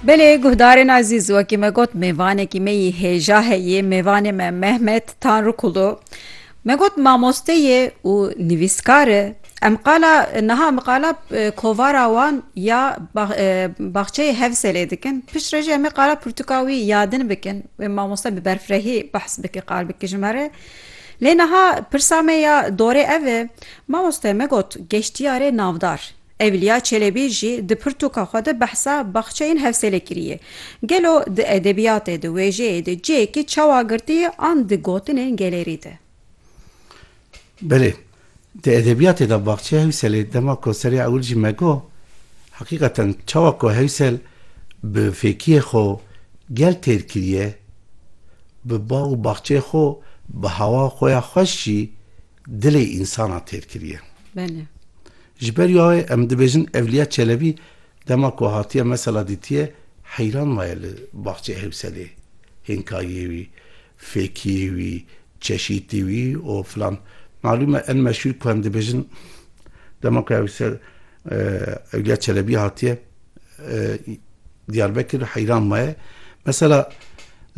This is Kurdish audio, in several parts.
Belê guhdarên ezîz wekî me got mêvanekî me yî hêja heyê mêvanê me Mehmet Tanrıkulu me got mamoste yê û nivîskar e em qala niha em qala e, kovara wan ya bax- e, baxçeyê Hevselê dikin piştre jî em ê qala pirtûka wî yadin bikin wê mamoste bi berfirehî behs bike qal bike ji me re lê niha pirsa me ya dorê ev e mamoste me got geştiyarê navdar Evliya Çelebî jî di pirtûka xwe de behsa baxçeyên Hewsêlê kiriye. Gelo di edebiyatê, di wêjeyê de cihêkî çawa girtiye an di gotinên gelêrî de? Belê. Di edebiyatê de baxçeya Hewsêlê dema ku serê ewil jî me got, heqîqeten çawa ku Hewsêl bi fêkiyê xwe gel têr kiriye, bi bax û baxçeyê xwe, bi hawa xwe ya xweş jî, Dilê însana têr kiriye. Belê. Ji ber ya wê em dibêjin Evliya Çelebî dema ku hatiye mesela dîtiye heyran maye li baxçeyê Hewselê, hênkayiyê wî, fêkiyê wî, çeşîtî wî û filan. Malûm e en meşhûr ku em dibêjin dema ku Hewsel Evliya Çelebî hatiye Diyarbekir heyran maye. Mesela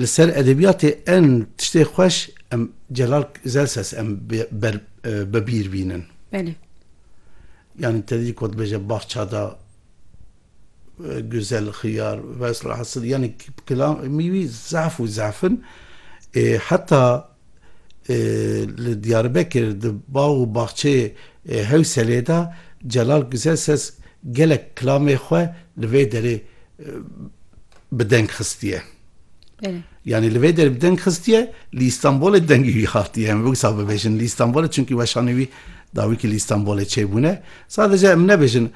li ser edebiyatê en tiştê xweş em Celal Zelses em ber bibîr bînin. Belê. Yani te dî ku dibêje bahça da güzel xiyar vesla hasil yani kilamî wî zaf û zafin. Heta Li Diyarbekir di bax û baxçeyê Hewselê de Celal Guzelses gelek kilamê xwe li vê derê bi deng xistiye. Yanî li vê derê bi deng xistiye, li Îstanbulê dengê wî hatiye. Em wisa bibêjin li Îstanbulê çunkî weşanê wî dawîkî li Îstanbulê çêbûne. Sadece em nebêjin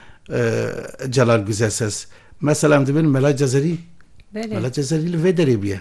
Celal Guzelses. Mesela em dibin Mela Cezerî. Mela Cezerî li vê derê bûye.